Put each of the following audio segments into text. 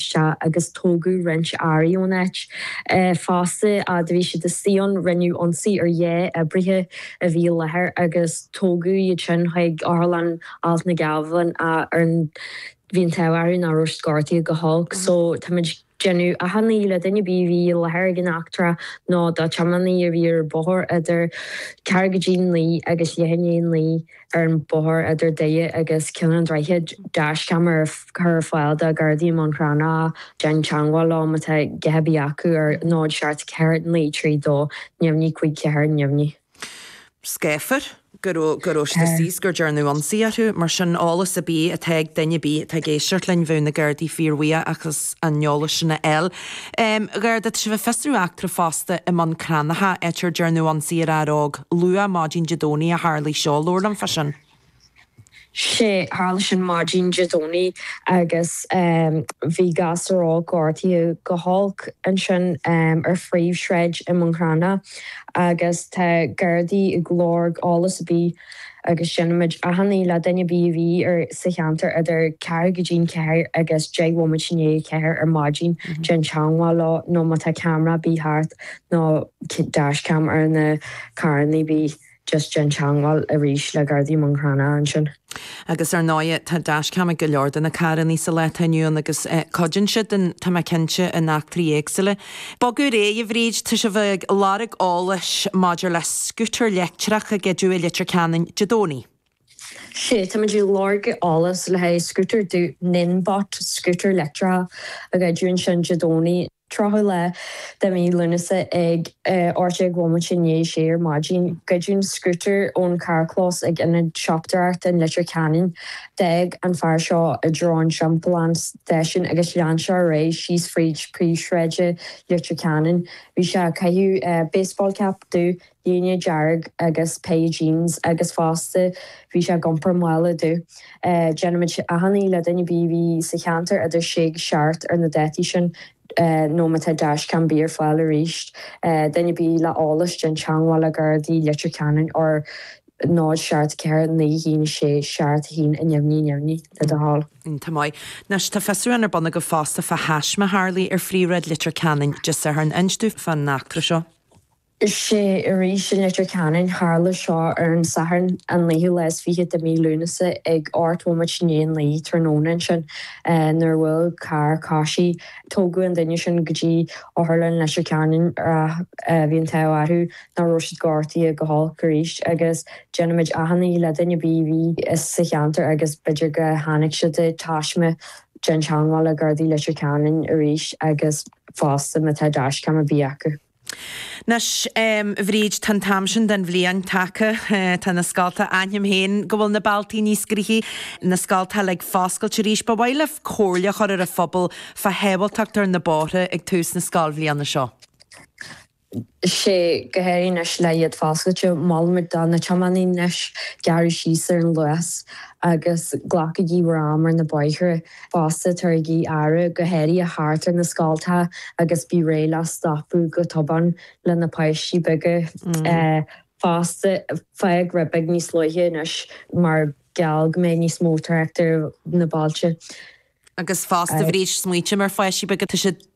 Sea, agus tógadh roinnt earraí ón áit fosta. Fhad a bhí siad ansin, rinneadh ionsaí ar dhá oibrithe a bhí i láthair agus tógadh iad sin chuig Otharlann Alt na nGealbhan, ach bhí an t-ádh orthu nach raibh siad gortaithe go holc. So, táimid déanamh achainí le duine ar bith a bhí i láthair ag an eachtra nó dá tiománaí a bhí ar an bóthar idir ceathrú go dtí naoi agus leath i ndiaidh naoi, Ar an bhóthar idir Doire agus Ceann an Droichid, dash-cam a chur ar fáil do Ghardaí i mBun Cranncha, déan teagmháil leo má tá a dhath ar bith acu ar 074932 neamhní 54 neamhní. Scáfar go raibh siad thíos, gur dearnadh ionsaí orthu, mar sin eolas ar bith atá ag duine ar bith atá ag éisteacht linn, bheadh na Gardaí fíorbhuíoch as an eolas sin a fháil. Garda, tá sibh ag fiosrú eachtra fosta i mBun Cranncha, áit ar dearnadh ionsaí ar fhear óg luath maidin Dé Domhnaigh a tharlaigh seo, labhair linn faoi sin. Sea, tharla sin maidin Dé Domhnaigh agus bhí gasúr óg gortaithe go holc ansin ar phríomhshráid i mBun Cranncha agus tá Gardaí ag lorg eolas ar bith agus déanaimid achainí le duine ar bith a bhí ar sa cheantar idir ceathrú go dtí'n ceathair agus deich bhomaite i ndiaidh a ceathair ar maidin déan teangmháil leo nó má tá ceamara ar bith thart nó dash-cam ar na carrannaí ar bith just déan teangmháil arís le Gardaí Bhun Cranncha ansin. Agus ar ndóighe tá dash-cam ag go leor de na carrannaí sa lá atá inniu ann agus cuidíonn siad, tá mé cinnte, in eachtraí éagsúla. Bogadh ar aghaidh, a Bhríd, tá sibh ag lorg eolais maidir le scútar leictreach a goideadh i Leitir Ceanainn Dé Domhnaigh. Sea, táimid ag lorg eolais le haghaidh scútar dubh Ninebot, scútar leictreach a goideadh ansin Dé Domhnaigh, tríochadú lá de mhí Lúnasa ag ocht déag bhomaite i ndiaidh a sé ar maidin, goideadh an scútar ón charrchlós ag Ionad Siopadóireachta in Leitir Ceanainn. D'fhág an fear seo i dtreo an timpeallán. Station agus lean sé ar aghaidh síos fríd príomhshráid Leitir Ceanainn. Bhí sé ag caitheamh baseball cap dubh, léine dearg agus beige jeans agus fosta bhí sé ag iompar mála dubh. Déanaimid achainí le duine ar bith a bhí sa cheantar idir sé agus seacht ar na dátaí sin nó má tá dashcam ar bith ar fáil arís duine ar bith le eolas déan teangmháil le Gardaí Leitir Ceanainn ar 0 7 4 9 1 6 7 1 neamhní neamhní le do thoil. Iontach maith. Anois, tá fiosrúchán ar bun agaibh fosta fá thaisme a tharlaigh ar Phríomhshráid Leitir Ceanainn Dé Sathairn. Inis domh fán eachtra seo? Sea, arís in Leitir Ceanainn. Tharla seo ar an Satharn, an naoú lá is fiche de mhí Lúnasa ag ocht bhomaite i ndiaidh a naoi tráthnóna ansin nuair a bhuail carr coisí. Tógadh an duine sin go dtí Otharlann Leitir Ceanainn ach bhí an t-ádh orthu ná raibh siad gortaithe go holc arís agus déanaimid achainí le duine ar bith a bhí sa cheantar agus b'fhéidir go tháinig sé de thaisme déan teangmháil le Gardaí Leitir Ceanainn arís agus fosta má tá dashcam ar bith acu. Anois Bhríd tá an t-am sin den bhliain tagtha, tá na scoltacha, aithnim féin go bhfuil na bealtaí níos gnoithí, na scoltacha ag foscailt arís, ba mhaith libh comhairle a chur ar an phobal fá shábháilteacht ar na bóithre ag tús na scoilbhliana seo? Sea go háirithe anois le iad foscailte. Molann muid do na tiománaí anois gearradh síos ar an luas agus glacaigí bhur am ar na bóithre. Fosta, tabharaigí aire go háirithe thart ar na scoltacha agus bí réidh le stopadh go tobann le na páistí beaga. Fosta, fág rud beag níos luaithe anois mar gheall go mbeidh níos mó trácht ar na bealtaí. Agus fosta, bí ag smaointiú ar pháistí beaga, tá siad.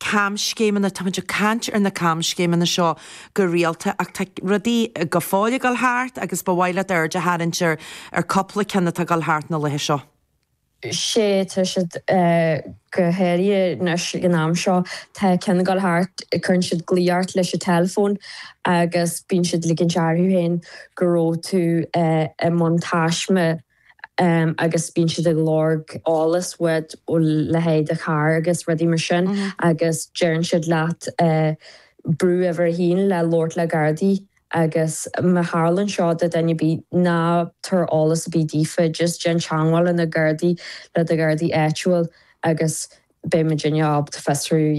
camscéimeanna. Táimid ag caint ar na camscéimeanna seo go rialta ach tá rudaí go fóill ag dul thart agus ba mhaith libh aird a tharraingt ar chúpla ceann atá ag dul thart na laetha seo. Sea, tá siad go háirithe anois ag an am seo. Tá ceann ag dul thart, cuireann siad glao ort leis an teileafón agus bíonn siad ag ligint orthu féin go raibh tú i ndiaidh taisme. agus bíonn siad ag lorg eolas uait a leithéid do charr agus rudaí mar sin agus deireann siad leat brú uimhir a haon le labhairt le Gardaí agus má tharlaíonn seo do dhuine ar bith ná tabhair eolas ar bith daofa just déan teangmháil le na Gardaí le do Ghardaí áitiúil agus beidh muid in ann ábalta fiosrú a dhéanamh.